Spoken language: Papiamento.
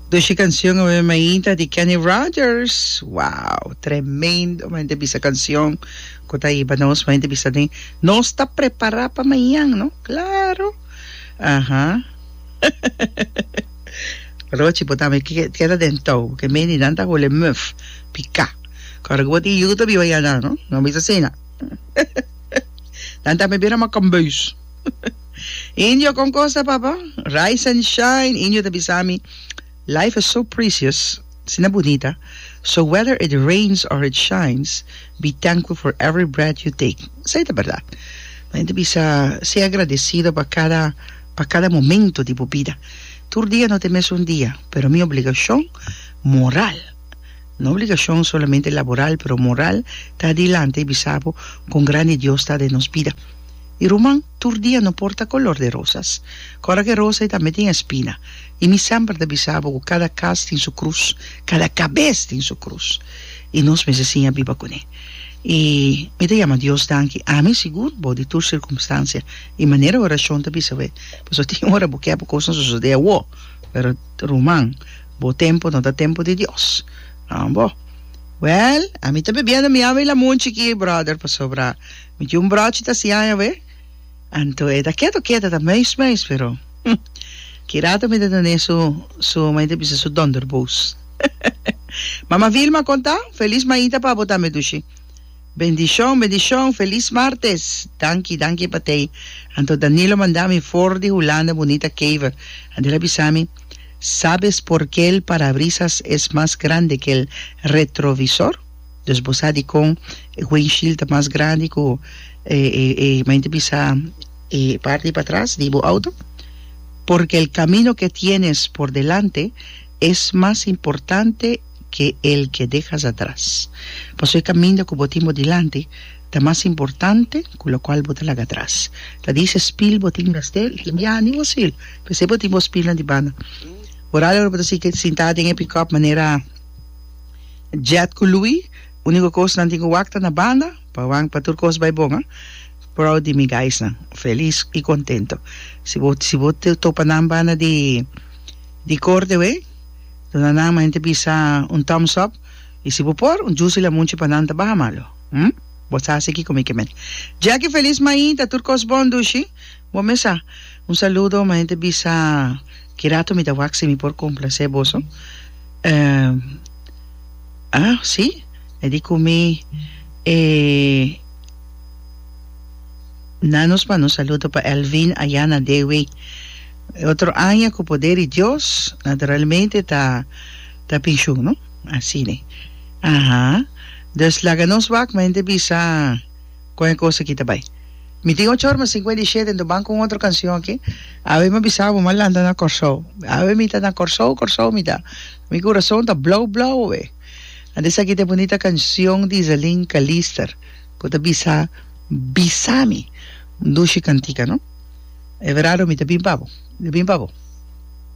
Dos e canción awe mainta di Kenny Rogers. Wow! Tremendo! M'a hende bisa canción cu ta hiba nos. M'a hende bisa den. Nos ta prepara pa mañan, no? Claro! Aha. Rochi, bo ta me keda den tou, porque Menidan ta hule muf, pica. Ora cu bo tin yu, ta biba ya nan, no? No bisa asina. Nan ta me bira makambeus. Indio con cosa papa? Rise and shine Indio ta bisa mi Life is so precious Si na bunita So whether it rains or it shines Be thankful for every breath you take Esei ta berdad Nan ta bisa Sea agradecido pa cada pa cada momento di bo bida Tur dia no ta e mesun dia Pero mi obligacion moral No obligacion solamente laboral pero moral Ta adelante y bisa bo con grandi Dios ta den nos bida. I ruman, tur dia no por ta color de rosas. Cora cu e rosa ei tambe tin espina. I mi semper ta bisa bo cu cada cas tin su cruz, cada cabes tin su cruz. I nos mester siña biba cun'e. I mi ta yama Dios danki, ami sigur, bou di tur circumstancia. I manera e oracion ta bisa bo e. Pasobra tin ora bo kier pa cosnan sosode awo, pero ruman, bo tempo no ta tempo di Dios. Ambo. Well, ami ta bebiendo mi awa i lamun chikí, brother, pasobra. Mi tin un brochi ta si aña be, anto e ta keto keto ta meis meis pero hm ki rato mi ta tene su su mi ta bisa su donderbous Mama Vilma kon ta? Feliz maita pa bo tambe dushi Bendishon bendishon feliz martes danki danki pa tei anto Danilo manda mi for di Hulanda Bunita Kever anto el a bisa mi Sabes porke el parabrisas es mas grande ke el retrovisor? Dus bo sa dikon e windsheild ta mas grandi ku e e e mayormente bisa e parti di patras di bo outo porque el camino ke tienes por delante es mas importante ke el ke dehas atras paso e kaminda ku bo tin bo dilanti ta mas importante ku lokual bo ta laga atras ta dise spiel bo tin mester i tin biaha ni bo spiel p'esei bo tin bo spielnan di banda ora lo bo ta sinta den e pickup manera. Jet ku Louie, úniko kos nan tin ku wak ta na banda, pa wak pa tur kos bai bon a. Proud di mi guysnan, felis i kontento. Si bo si bo topa nan banda di di korte wei, duna nan mente bisa un thumbs up i si bo por un jusi lamunchi pa nan ta baha malo. Hm? Bo sa si kiko mi ke men. Jackie felis mañita tur kos bon dushi. Bo mesa, un saludo ma hende bisa ki rato mi ta wak si mi por complacé boso. Ehm ah si e di cu mi e na nos manda un saludo pa Elvin aya na Dewey. E otro aña cu poder di Dios naturalmente ta ta pensioen no asina. Aha. Dus laga nos wak ma hende bisa. Con e cos aki ta bay. Mi tin ocho ora mas cincuenta y shete entoban con otro cancion aki awe mi bisa bo mas lanta na Corsou awe mi ta na Corsou Corsou mi ta mi curason ta blou blou awe anto esaki ta e bunita cancion di Isalin Calister cu ta bisa bisa mi un dushi cantica no e verado mi ta bin pa bo mi ta bin pa bo.